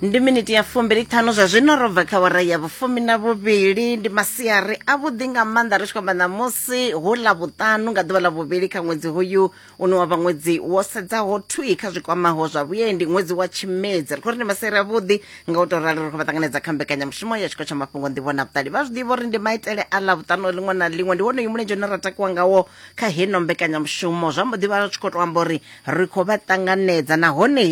ndi miniti ya fumbili ṱhanu zwa zwino ro bva kha wara ya vhufumi na vhuvhili ndi masiari a vhuḓi nga maanḓa ri tshi khou amba ṋamusi hu ḽa vhuṱanu nga ḓuvha ḽa vhuvhili kha ṅwedzi hoyu une wa vha ṅwedzi wo sedzaho thwi kha zwikwamaho zwa vhuendi ṅwedzi wa tshimedzi ri khou ri ndi masiari a vhuḓi nga u tou rali ri khou vha ṱanganedza kha mbekanyamushumo ya tshiko tsha mafhungo nḓivho na vhuṱali vha zwi ḓivha uri ndi maitele a ḽa vhuṱanu ḽiṅwe na ḽiṅwe ndi wonoyu mulenzhe une ra takuwa ngawo kha heno mbekanyamushumo zwa mbo ḓi vha tshi khou tou amba uri ri khou vha ṱanganedza nahone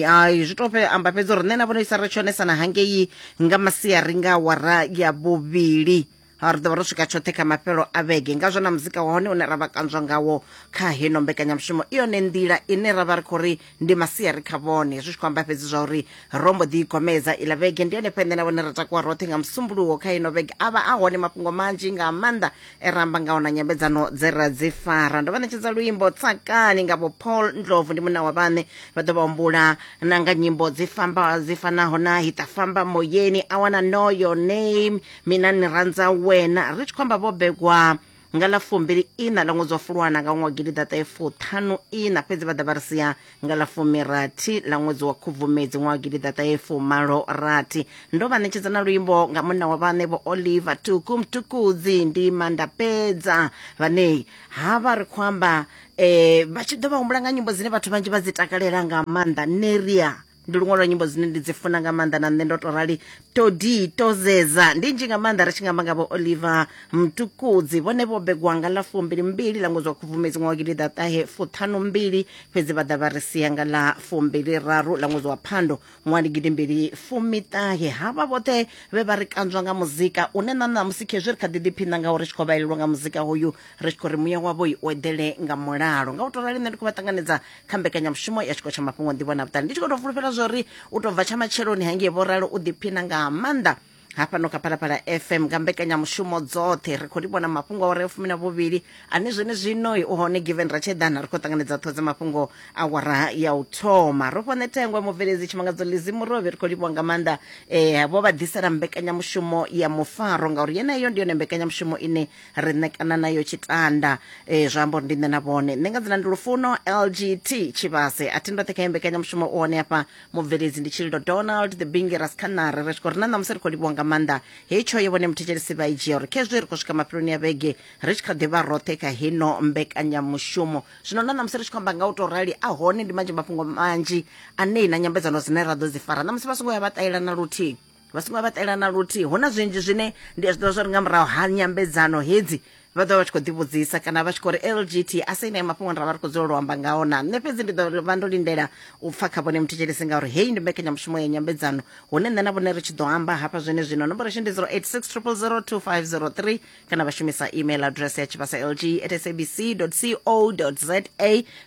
zwi to amba fhedzi uri nṋe na vhona isa ri tshonesana hangei nga masiari nga wara ya vhuvhili ri ḓovha ro swika tshoṱhe kha mafhelo a vhege ngazwo na muzika wa hone une ra vha kanzwa ngawo kha heno mbekanyamushumo i yone nḓila ine ra vha ri khou ri ndi masiari kha vhone zwi tshi khou amba fhedzi zwa uri ro mbo ḓi igomedza iḽa vhege ndi yone fhende na vhone ra takuwa roṱhe nga musumbuluwo kha heno vhege a vha a hone mafhungo manzhi nga maanḓa ramba nga ona nyambedzano dze ra dzi fara ndo vha ṋetshedza luimbo tsakani nga vho paul ndlovu ndi munna wa vhaṋe vha ḓo vha humbula na nga nyimbo dzi famba dzi fanaho na hita famba moyeni i wanna know your name mina ni randza wena ri tshi khou amba vho begwa nga ḽa fumbili ina ḽa ṅwedzi wa fulwana nga ṅwaha wa gidiḓaṱahefuṱhanu ina fhedzi vha ḓa vha ri sia nga ḽa fumirathi ḽa ṅwedzi wa khubvumedzi ṅwaha gidi ḓaṱahefumalo rathi ndo vha ṋetshedza na luimbo nga munna wa vhaṋe vho oliver tuku mtukudzi ndi mandapedza vhane ha vha ri khou amba um vha tshi ḓo vha humbula nga nyimbo dzine vhathu vhanzhi vha dzi takalela nga maanḓa neria ndi luṅwe lwa nyimbo dzine ndi dzi funa nga maanḓa na nṋe ndo to rali todi tozeza ndi nzhi nga maanḓa ri tshi nga amba nga vho oliver mtukudzi vhone vho begwa nga ḽa fumbilimbili ḽa ṅwedzi wa khubvumedzi ṅwaha wa gidiḓaṱahe fuṱhanumbili fhedzi vha ḓa vha ri sia nga ḽa fumbiliraru ḽa ṅwedzi wa phando ṅwaha ndi gidimbili fumiṱahe havha vhoṱhe vhe vha ri kanzwa nga muzika une na ṋamusi khezwi ri kha ḓi ḓiphina ngaho ri tshi khou vhaelelwa nga muzika hoyu ri tshi khou ri muya wavho i u eḓele nga mulalo nga u to rali nṋe ndi khou vha ṱanganedza kha mbekanyamushumo ya tshiko tsha mafhungo ndivho na vhuṱali ndi tshi khou tou fulufhela zwa uri u tou bva tsha matsheloni hangei vho ralo u ḓiphina nga maanḓa hafhano kha phalaphala fm nga mbekanyamushumo dzoṱhe ri khou livhona mafhungo awara ya fumi na vhuvhili ane zwene zwino u hone given ratshedana ri khou ṱanganedza ṱhoho dza mafhungo awara ya u thoma ro fhone thengwa mubveledzi tshimangadzo lizi murovhi ri khou livhiwa nga maanḓa um vho vha ḓisela mbekanyamushumo ya mufaro ngauri yeneyo ndi yone mbekanyamushumo ine ri ṋekana nayo tshitanda e, zwa amba uri ndi nṋe na vhone nṋe nga dzina ndi lufuno lgt tshivhase a thi ndoṱhe kha yembekanyamushumo u hone hafha mubveledzi ndi tshililo donald the bingi raskhanare ri tshi khou ri na ṋamusi ri khou livhiwa nga maanḓa he tshoyo vhone muthetshelesi vha i dzhia uri khezwi ri khou swika mafheloni ya vhege ri tshi kha ḓivha roṱhe kha hino mbekanyamushumo zwino na ṋamusi ri tshi khou amba nga u tou rali a hone ndi manzhi mafhungo manzhi anei na nyambedzano dzine ra ḓo dzi fara ṋamusi vha songo ya vha ṱahela na luthihi vha songo vhaṱela na luthihi hu na zwinzhi zwine ndi a zwi ḓivha zwa uri nga murahu ha nyambedzano hedzi vha ḓovha vha tshi khou ḓivhudzisa kana vha tshi khou ri lgt a sa ine mafhungo ra vha ri khou dzula lu amba ngao na nṋe fhedzi ndi ḓo vha ndo lindela u pfa kha vhone muthetshelesi ngauri heyi ndi mbekanyamushumo ya nyambedzano hune nṋe na vhone ri tshi ḓo amba hafha zwene zwino nomboro ishe ndi 086 000 2503 kana vha shumisa email address ya tshivhasa lg at sabc co za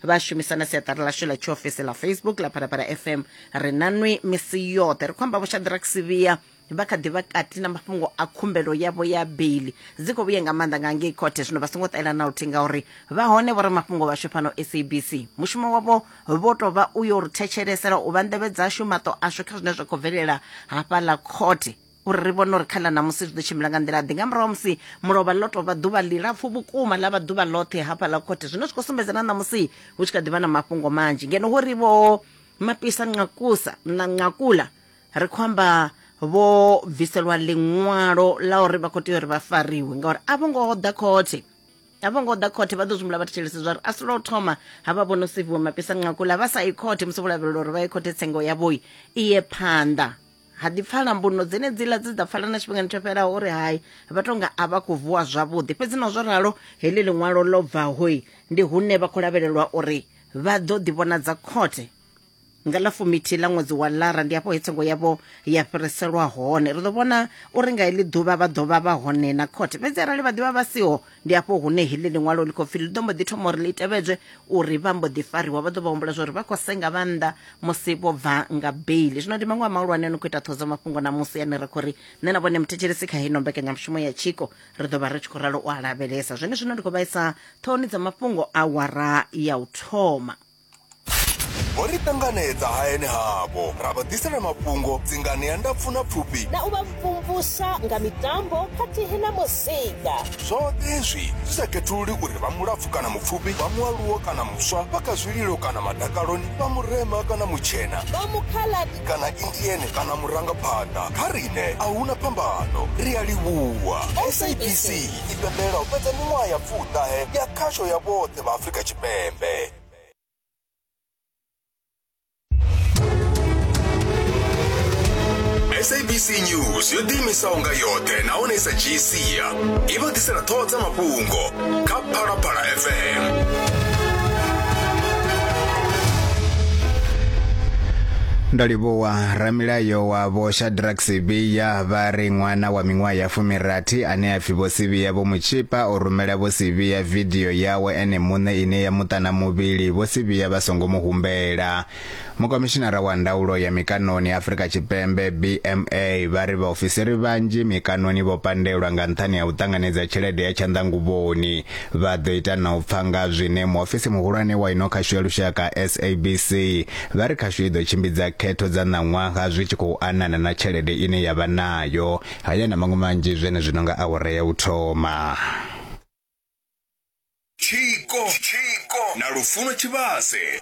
vha shumisa na siaṱari lashu ḽa tshiofisi ḽa facebook ḽa phalaphala fm ri na nwi misi yoṱhe ri khou amba vhoshadrack sivhiya vha kha ḓivha kati na mafhungo a khumbelo yavho ya beili dzi khou vhuye nga maanḓa nga ngei khothe zwino vha songo ṱaela na luthihi ngauri vha hone vho ri mafhungo vhashu fhano sabc mushumo wavho vho tou vha u yo ri thetshelesela u vha nḓevhe dzashu maṱo ashu kha zwine zwa khou bvelela hafhaḽa khothe uri ri vhone uri kha ḽa ṋamusi zwi ḓo tshimbila nga nḓila ḓi nga murahu musi mulovha ḽo tovha ḓuvha ḽilapfu vhukuma ḽa vha ḓuvha ḽoṱhe hafha ḽa khothe zwino zwi khou sumbedza na ṋamusi hu tshi kha ḓivha na mafhungo manzhi ngeno ho ri vho mapisa nqakusa na nqakula ri khou amba vho bviselwa ḽiṅwalo ḽa uri vha khou tea uri vha fariwe ngauri a vho ngo ḓa khothe a vho ngo ḓa khothe vha ḓo zwimula vha thetshelese zwa uri a si lwa u thoma ha vha vhono seviwa mapisa nqakula vha sa i khothe musi vho lavhelela uri vha ye khothe tsengo yavhoi i ye phanḓa ha ḓi pfala mbuno dzenedziḽa dze dza pfala na tshifhingani tsho fhelaho uri hai vha tonga a vha khou vuwa zwavhuḓi fhedzi na zwo ralo heḽi ḽiṅwalo ḽo bvahoi ndi hune vha khou lavhelelwa uri vha ḓo ḓivhonadza khothe nga ḽa fumithi ḽa ṅwedzi wa lara ndi afho hetsengo yavho ya fhiriselwa hone ri ḓo vhona uri nga heḽi ḓuvha vha ḓovha vha hone na khothe fhedzi arali vha ḓivha vha siho ndi hafho hune heḽi ḽiṅwalo ḽi khou pfi ḽi ḓo mbo ḓi thoma uri ḽi tevhedzwe uri vha mbo ḓi fariwa vha ḓo vha humbula zwauri vha khou senga vha nnḓa musi vho bva nga beili zwino ndi maṅwe a mahulwane no khou ita ṱhodzo mafhungo na musi ane ra khou ri nṋe na vhone muthetshelesi kha heino mbekanyamushumo ya tshiko ri ḓo vha ri tshi khou ralo u a lavhelesa zwone zwino ndi khou vhaisa ṱhohoni dza mafhungo a wara ya u thoma vho ri ṱanganedza hayani havho ra vha ḓisela mafhungo dzingani ya ndapfu na pfufhi na u vha mvumvusa nga mitambo khathihi na muzika zwoṱhe izwi zwi sa khethululi uri vha mulapfu kana mupfufhi vha mualuwo kana muswa vha kha zwililo kana madakaloni vha murema kana mutshena vha mukhaladi kana indiene kana murangaphanḓa kha riṋe a huna phambano ri a livhuwa sabc i pembela u fhedza miṅwaha ya pfuṱahe ya khasho ya vhoṱhe Tshipembe vha Afrika Tshipembe. sabc news yo ḓiimisaho nga yoṱhe nahone i sa dzhii sia i vha ḓisela ṱhoho dza mafhungo kha phalaphala fm ndo livhuwa ramilayo wa vho shadrack sibiya vha ri ṅwana wa miṅwaha ya fumirathi ane a pfi vho sibiya vho mutshipa o rumela vho sibiya vidio yawe ene muṋe ine ya muṱa na muvhili vho si vhiya vha songo mu humbela. Mukomishinara wa ndaulo ya mikaṋoni Afrika Tshipembe BMA vha ri vhaofisiri vhanzhi mikaṋoni vho pandelwa nga nṱhani ha u ṱanganedza tshelede ya tshanḓanguvhoni. Vha ḓo ita na u pfa nga zwine muofisi muhulwane wa ino khasho ya lushaka SABC vha ri khasho i ḓo tshimbidza khetho dza ṋaṅwaha zwi tshi khou anana na tshelede ine ya vha nayo. Haya na maṅwe manzhi zwenezwino nga awara ya u thoma. Tshiko na Lufuno Tshivhase.